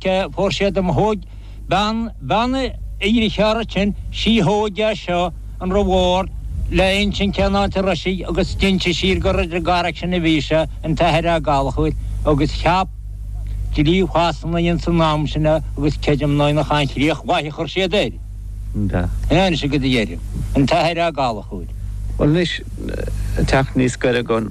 Cé fuair sé dom thóig bean bean i ndritheár sin sí thóig é seo an raibh órd le insin cén áit a raibh sé agus d'innis sí gur ar an gcarraig sin a bhí sé an tAthair Ó Gallchóir agus cheap dlí Shasana ins an am sin é agus creidim ná ina chan críoch mhaith a chuir siad air. Ná anois a gud a dheirim an tAthair Ó Gallchóir. Bhuel anois teacht níos goire gon.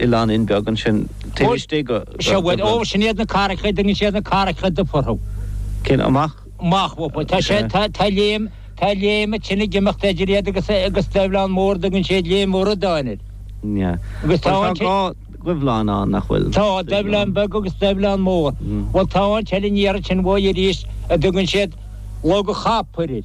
Oileáinín beag ansin. Taobh istigh go Dhuibhleán. Ó, sin iad na carraigeacha, dtugann siad na carraigeacha dubha orthu. Cén amach? Amach bhfo. Tá sé, tá, tá léim, tá léim a tine ag imeacht idir iad agus, agus Duibhleán Mór, dtugann siad léim mhóra d'áinid. Nha. Agus tá an té. Bhuel, tá dhá Dhuibhleán ann, nach bhfuil? Tá, Duibhleán Beag agus Duibhleán Mór. Bhuel, tá an t-oileán thiar ansin uaidh arís a dtugann siad Log a Chapaill.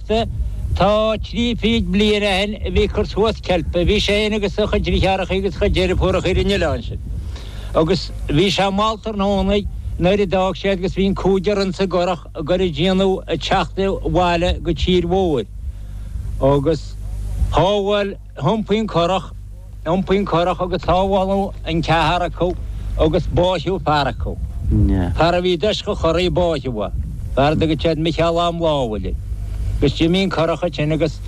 Teachta, tá trí fichid bliain ó shin a bhí ag cur suas ceilpe. Bhí sé fhéin agus a chuid drithárachaí agus a chuid deirfiúrachaí ar an oileán sin. Agus bhí sé mall tráthnóna nuair a d'fhág siad agus bhí an cúigear ins an gcurach a gcur a dianamh ag teacht abhaile go tír mhóir. Agus shábháil. hiompaíodh an currach, iompaíodh an currach agus sábháladh an ceathar acu agus báitheadh fear acu. Fear a bhí i dtoiseach an churraigh báitheadh é. Fear a dtugadh siad Micheál Ó Maolfhábhail agus d'imigh an currach ansin agus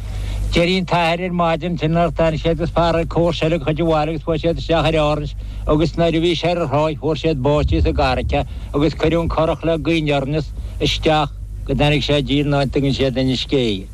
d'éirigh an t-athair ar maidin sin nár tair siad agus fear ag comhar seilg a chuid abhaile agus chuaidh siad isteach ar Árainn agus nuair a bhí sé ar an tráigh fuair siad báite sa gcurrach é agus cuireadh an currach le gaoith aniar aneas isteach go dtáinig sé i dtír in áit a dtugann siad an uisce é.